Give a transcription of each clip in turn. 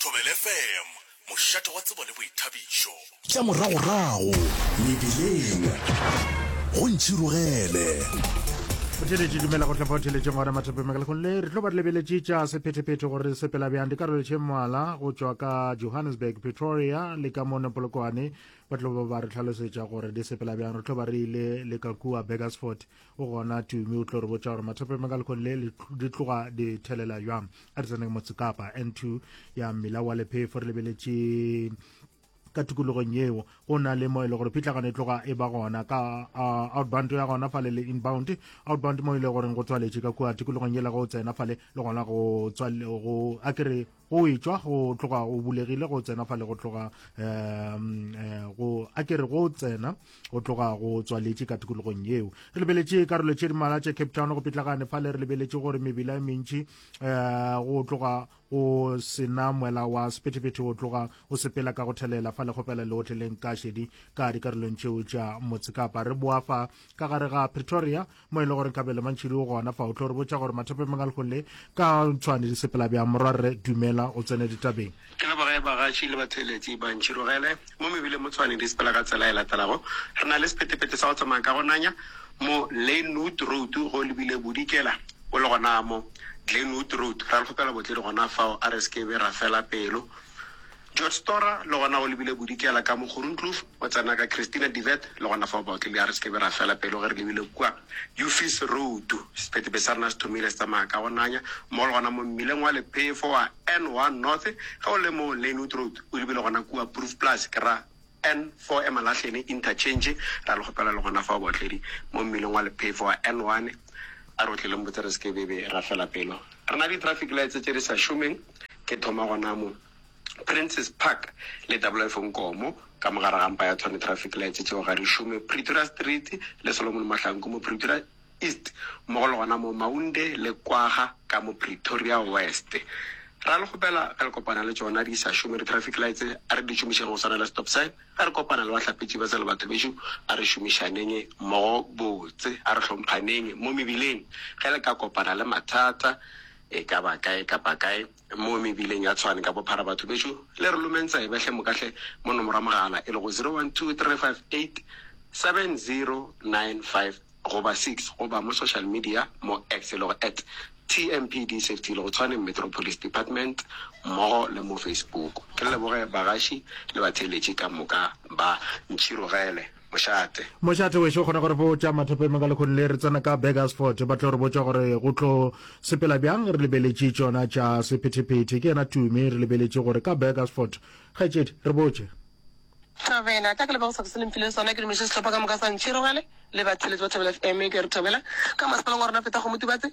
Thobela FM, mošate wa tsebo le boithabišo. Tša moragorago mebileng go ntšhirogele. Botheletši dumela go tlhopha botheletšeng gona matshepeng makalekgong le re tlo ba re lebeletše tša sephetephete gore re sepela bjang dikarolo tše mmalwa go tšwa ka johannesburg pretoria le ka mone polokwane ba tlo ba ba re tlhalosetša gore di sepela bjang re tlo ba re ile le ka kua burgersford o gona tumi o tlo re botša gore mathope ma ka lekong le di tloga di thelela jwang a re tseneng motsekapa n two ya mmila wa lephefo re lebeletše ka tikologong yeo go na le mo e le gore phitlagano e tloga e ba gona ka outbound ya gona fale le inbound outbound mo e le goreng go tswaletše ka kua tikologong yela go tsena fale le gona go tswale go a kere go etšwa go tloga o bulegile go tsena fa le go tloga um go a kere go tsena go tloga go tswaletše ka tikologong yeo re lebeletše karolo tše dimala tše cape town go pitlagane fa le re lebeletše gore mebila e mentši um go tloga go sena mwela wa sephethephethe o tloga o sepela ka go thelela fa le kgopela le otleleng ka šedi ka dikarolong tšeo tša motse kapa re boa fa ka gare ga pretoria mo e le gore nkabe le mantšhidi o gona fa o tlo re botša gore mathape mang a lego le ka tshwane di sepela bjang morwa rre dumela o tsene ditabeng ke le boge bagatši le batheeletši ba ntšhirogele mo mebile mo tshwane di sepela ka tsela e latelago re na le sepetepete sa go tsamaya ka go nanya mo lenwood road go lebile bodikela o le gona mo glenwood road ra le kgopela botledi gona fao a re sekebe ra fela pelo George Storra, le gona o lebile bodikela ka mo Groenkloof, o tsena ka Christina de Wet, le gona fao baotledi a re se ke be ra fela pelo ge re lebile kua Uffie's Road. Sephetho be sa rena se thomile se tsamaya ka go nanya, mmogo le gona mo mmileng wa lephefo wa N one North, ge o le mo Lynwood Road, o lebile gona kua Proefplaas, ke ra N four Emalahleni Interchange, ra le kgopela le gona fao baotledi mo mmileng wa lephefo wa N one, a re o tle le mpotse re se ke be be ra fela pelo re na le di-traffic lights tše di sa šomeng, ke thoma gona mo. Princes Park le Doublelife Nkomo ka mo gare ga mpa ya Tshwane Traffic Lights tšeo ga di šome, Pretoria Street le Solomon Mahlanku mo Pretoria East mmogo le gona mo Maunde le Kwagga ka mo Pretoria West. Ra le kgopela ge le kopana le tšona di sa šome di-traffic lights a re di šomišeng go swana le stop sign, ge re kopana le bahlapetši ba tsela batho bešo a re šomišaneng mmogo botse, a re hlomphaneng mo mebileng. Ge le ka kopana le mathata e ka ba kae kapa kae, Mo mebileng ya Tshwane ka bophara batho bešo le re lomeng tsebe hle moka hle mo nomoro ya mogala e lego 0123587095 goba 6 goba mo social media mo X e lego at TMPD Safety e lego Tshwane Metro Police Department mmogo le mo Facebook. Ke leboge bagaši le batheeletši ka moka ba Ntšhirogele. mošate. Mošate wešo o kgona go re botša mathopeng ka lekhoni le re tsena ka Burgersford ba tlo re botša gore go tlo sepela bjang re lebeletše tšona tša sephetephete ke yena Tumi re lebeletše gore ka Burgersford kgaetšedi re botše Thabela tla ke leboga sefako se le mphileng sona ke dumediše sehlopha ka moka sa Ntšhirogele le batheletši ba Thabela FM ke re thabela ka masepaleng wa rona feta go motubatse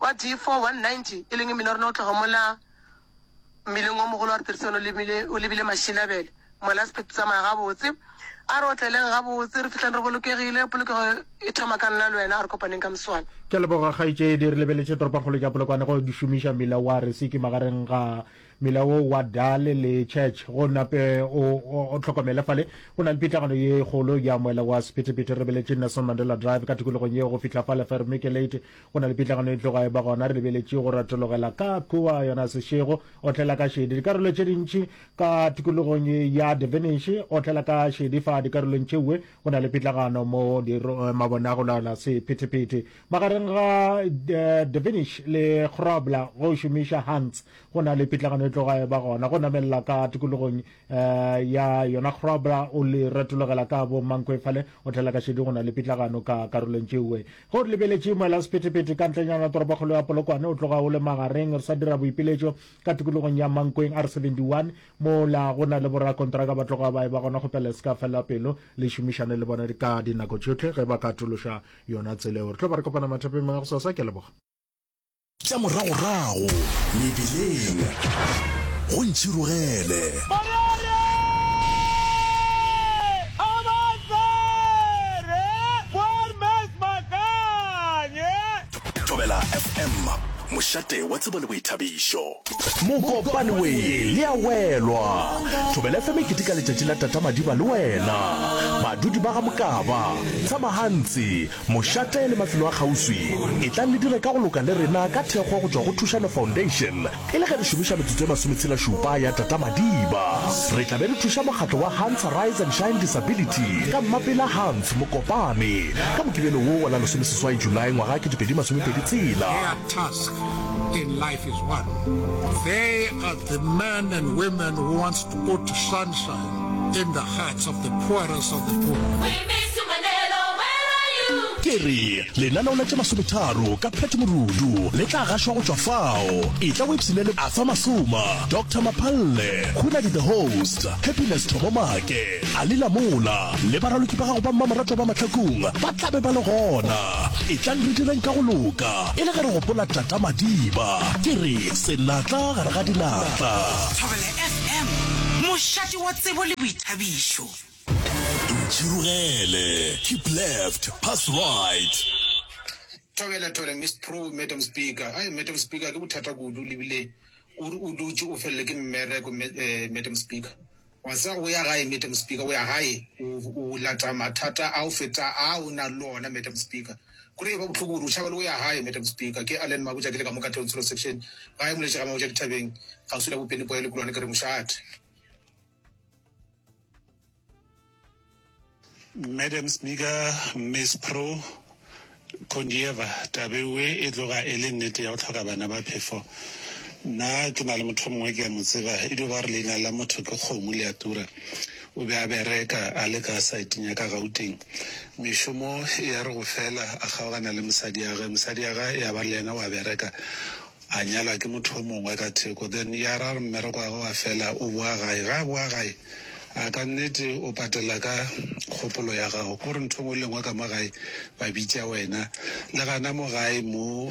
Wa D4 190, e leng mmila o rena o tloga mola mmileng o mogolo wa Retherisano o lebile, o lebile Mashinabele. Mola sephetho se tsamaya gabotse. A re otleleng gabotse, re fihleng re bolokegile. Polokego e thoma ka nna le wena. A re kopaneng ka moswane. Ke a leboga kgaetšedi. Re lebeletše toropakgolo ya Polokwane go šomiša mmila wa Resiki magareng ga mela wo wa dale le church go nape o, o, o tlhokomele fale go na le pitlagano ye kgolo ya moela wa sephethephethe re beletše nelson mandela drive ka tikologong yeo go fihla fale fermike late go na le pitlagano e tloga e ba gona re lebeletše go ratologela ka kua yona sešego o tlela ka šedi dikarolo tše dintši ka tikologong ya devenish o tlela ka šedi fa dikarolong tšeue go na le pitlagano mo eh, mabona go laola sephethephethe magareng ga eh, devenish le grobla go šomiša hunts go na le pitlagano e tloga e ba gona go namelela ka tikologong um ya yona grobra o le retologela ka bo mankwefale o tlela ka šedi go na le pitlagano ka karolong tšeue go re lebeletše moela sephethephethe ka ntlenyana toropokgolo ya polokwane o tloga o le magareng re sa dira boipiletšo ka tikologong ya mankweng r 71 mola go na le borakontraka ba tloga ba e ba gona kgopela se ka felela pelo le šomišane le bona ka dinako tšohle ge ba ka atološa yona tseleo re tlo ba re kopana mathapeng mangwe go sasa ke leboga Tša moragorago mebileng go ntšhirogele. mošate wa tsebo le boithabišo mokopane we le ya welwa thobela fm e ketika letšatši la tata madiba le wena badudi ba ga mokaba tsamagantsi Mošate le mafelo a kgauswi, etlang le dire ka go loka le rena ka thekgo go tšwa go Thušano Foundation e le ge re šomiša metsotso e masometshelašupa ya Tata Madiba. Re tla be re thuša mokgatlo wa Hans Arise and Shine Disability ka Mmapela Hans Mokopane ka Mokibelo wo wa la lesomeseswai Julae ngwaga ketepedi masomepedi tshela. Their task in life is one. They are the men and women who wants to go to sunshine. In the hearts of the poorest of the poor. We miss you, Manelo. Where are you? Ke re, lenaneo la tše masometharo ka Pat Morudu le tla gašwa go tšwa fao. Etla o ipshine le Arthur Masoma, Doctor Maphalle, Hunadi the Host, Happiness Thomomake, Ali Lamola le baraloki ba gago ba mmamoratwa ba mahlakong ba tla be ba le gona. Etlang re direng ka go loka e le ge re gopola Tata Madiba. Ke re, senatla gare ga dinatla. Pam, mošate wa tsebo le boithabišo. Ntšhirogele, keep left, pass right. Thobela, thobela, Miss Pro, Madam Speaker. Ai, Madam Speaker, ke bothata kudu, lebile o re o dutše o felelwe ke mmereko, eh, Madam Speaker. Wa tseba o ya gae, Madam Speaker, o ya gae, o, o lata mathata a go feta a o nang le ona, Madam Speaker. Go rile ba bohloko gore o tšhaba le go ya gae. Madam Speaker, ke Allen Mabotja ke le ka mo ka Tonsilo Section, gae mo letše ga Mabotja Dithabeng, kgauswi la Bopeni Poya Lekulwane ke re mošate. Madam Speaker, Miss Pro Kondieva, tabeoe e tloga e le nnete ya go tlhoka bana ba phefo. Nna ke na le motho o mongwe ke a mo tseba e dio ba re leina la motho ke kgomo le a tura. O be a bereka a le ka saeteng ya ka Gauteng. Mešomo ya re go fela, a kgaogana le mosadi ya ge. Mosadi ya ge ya ba le yena o a bereka, a nyalwa ke motho o mongwe ka theko. Then ya ra re mmereko wa ge wa fela, o boa gae. Ge a boa gae, a ka nnete o patela ka kgopolo ya gago. Ke gore ntho e nngwe le e nngwe ka mo gae ba bitša wena. Le gana mo gae mo,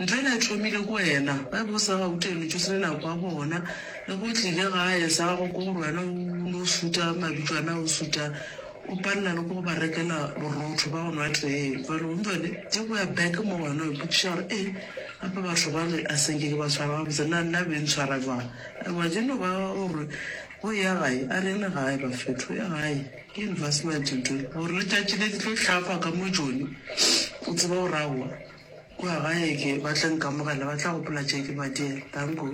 Ntho e ne e thomile go wena, ge bo sa gauta e no tšo senya nako ya bona, le ge o tlile gae sa gago ke gore wena o no shuta mabitso a na o shuta o palela le go ba rekela borotho ba go nwa tee jwale o ntšwa le tše go ya back mo wena o ipotšiša gore ee gape batho bale a senke ke ba tshwara gabotse na nna be ntshwara jwang ewa je no ba gore go e ya gae a rene gae ba fetho ya gae ke investment ntho gore letšatši le di tlo hlafa ka mo jone o tseba go rawa Kua gae ke ba tla nkamogela, ba tla gopola tše ke ba dira. Danko.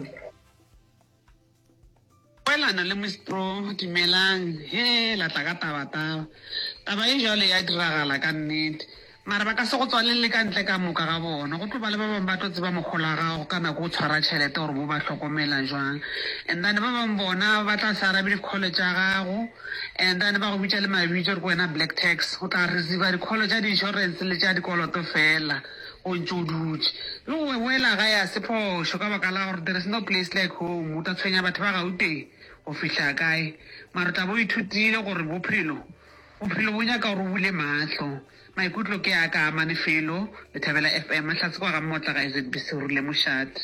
Poelano le Miss Pro, Dumelang, hee la tla ka tabataba. Taba e bjalo e a diragala ka nnete. Mara ba ka se go tswalelle ka ntle ka moka ga bona. Go tlo ba le ba bangwe ba tlo tseba mogolo wa gago ka nako o tshwara tšhelete gore bo ba hlokomela bjang. And then ba bangwe bona ba tla se arabe di-call tša gago. And then ba go bitša le mabitso gore ke wena black tax. O tla receiver di-call tša di-insurance le tša dikoloto fela o ntše o dutše. Yo we wela gae ga se phošo ka baka la gore there is no place like home. O tla tshwenya batho ba Gauteng go fihla kae? Mara o tla bo o ithutile gore bophelo, bophelo bo nyaka gore o bule mahlo. Maikutlo ke a ka a mane felo. Lethabela FM, Hlatse kwa ga Mmotla ga SABC go rile mošate.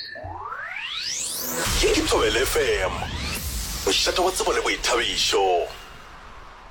Ye ke Thobela FM, mošate wa tsebo le boithabišo.